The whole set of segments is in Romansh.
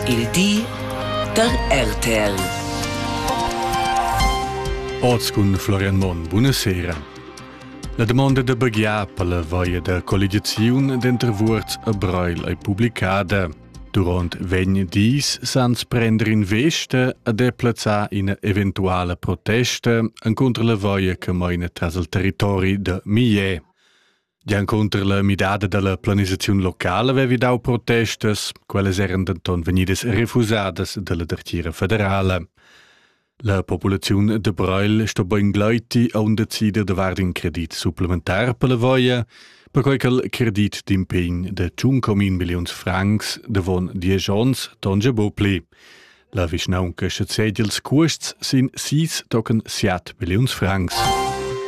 Il di da RTL. Oz cun Florian Monn. Buonasera. La domanda da baghiar per la vaia da colligiaziun denter Vuorz e Breil ei publicada. Duront vegn dis sans prender in veste a deplazzar ina eventuala protesta encontro la vaia che meina tras il territori da Millet. Giancunter la midada dalla planisaziun locala vevi dau protestas, quellas eran denton vegnidas refusadas dalla Dertira federala. La populaziun de Breil sto bein gleiti a un decider de vard in credit supplementar per la voia, perquei che credit d'impegn de tschun comin milliuns francs de von diesch ons tonge bo pli. La vischnaunca sezedi ils cuosts sin sis tochen siat milliuns francs.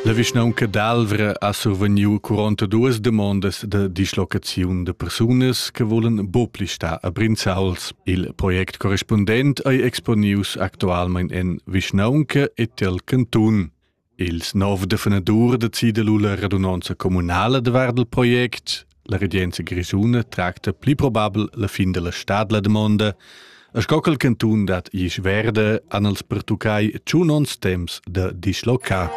La vischnaunca d'Alvra ha survegniu 42 demondas de dislocaziun de persunas che volen bopli sta a Brinzauls. Il project correspondent ei exponius actualmein en vischnaunca e tel cantun. Ils nov defenadurs decida lu la radunonza communala davart il project. La regenza grischuna tracta pli probabel la fin della stad la domanda, e sco quel cantun dat isch verde an els pertuccai tschun ons temps da dislocar.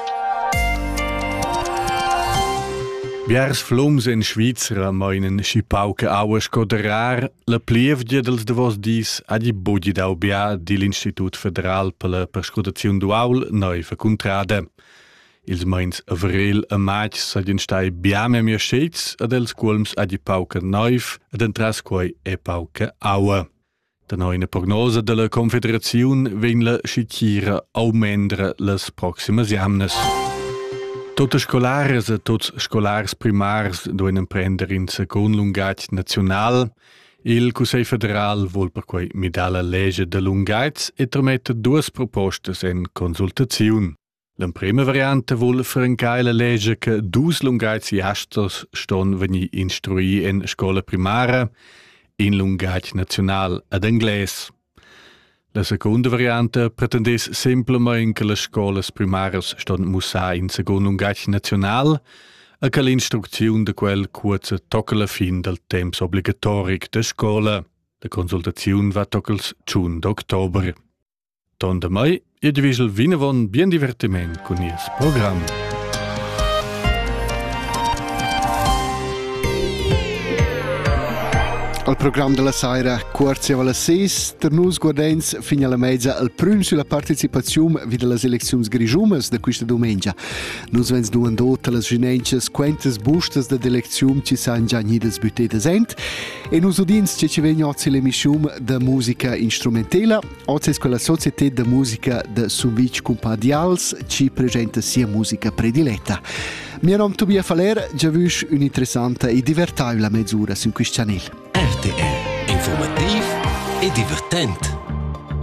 Biars flums in Svizra meinen schi pauca aua sco der rar, La plievgia dals davos dis ha di bugi dau bia digl Institut federal per la perscrutaziun d'uaul neiva cuntrada. Ils meins avril e matg seigien stai bia memia schets ed els cuolms ha di pauca neiv ed entras quei è pauca aua. Da neuna prognosa della Confederaziun vegn la schitira aumendra las proximas jamnas. Tutte scolares e tuts scolars primars doen emprender in secund lungatg naziunal. Il Cussegl federal vuol perquei midar la lege de lungatg e trametta duas propostas en consultaziun. L'emprima variante vuol francar la lege che dus lungatgiasters ston venir instrui en scola primara, in lungatg naziunal ad englais. La secunda varianta pretendess semplamain che las scolas primaras ston mussar in secund lungatg naziunal e che l'instrucziun da quel cuozza tocca la fin dal temps obligatoric da scola. La consultaziun va toccals tschun d'october. Ton da mai Id vigel vinavon bien divertiment cun nies program. Al program della saira cuorzi vala ses, ter nus guardens fin alla mezza al prüm sulla partecipaziun vi delle elecziuns grigiumas de questa domenica. Nus vens duandot las ginenchas quentas bustas de d'elecziun ci san già nidas büttetas ent e nus udins ce ci vegn ozzi l'emissium de musica instrumentela Oz es quella societed da musica da Sumvitg Cumpadials chi presenta sia musica prediletta. Mio nom Tobia Faller, già vüsch un'interessanta e divertaivla mezz'ura sün quist chanel. RTR, informativ e divertent.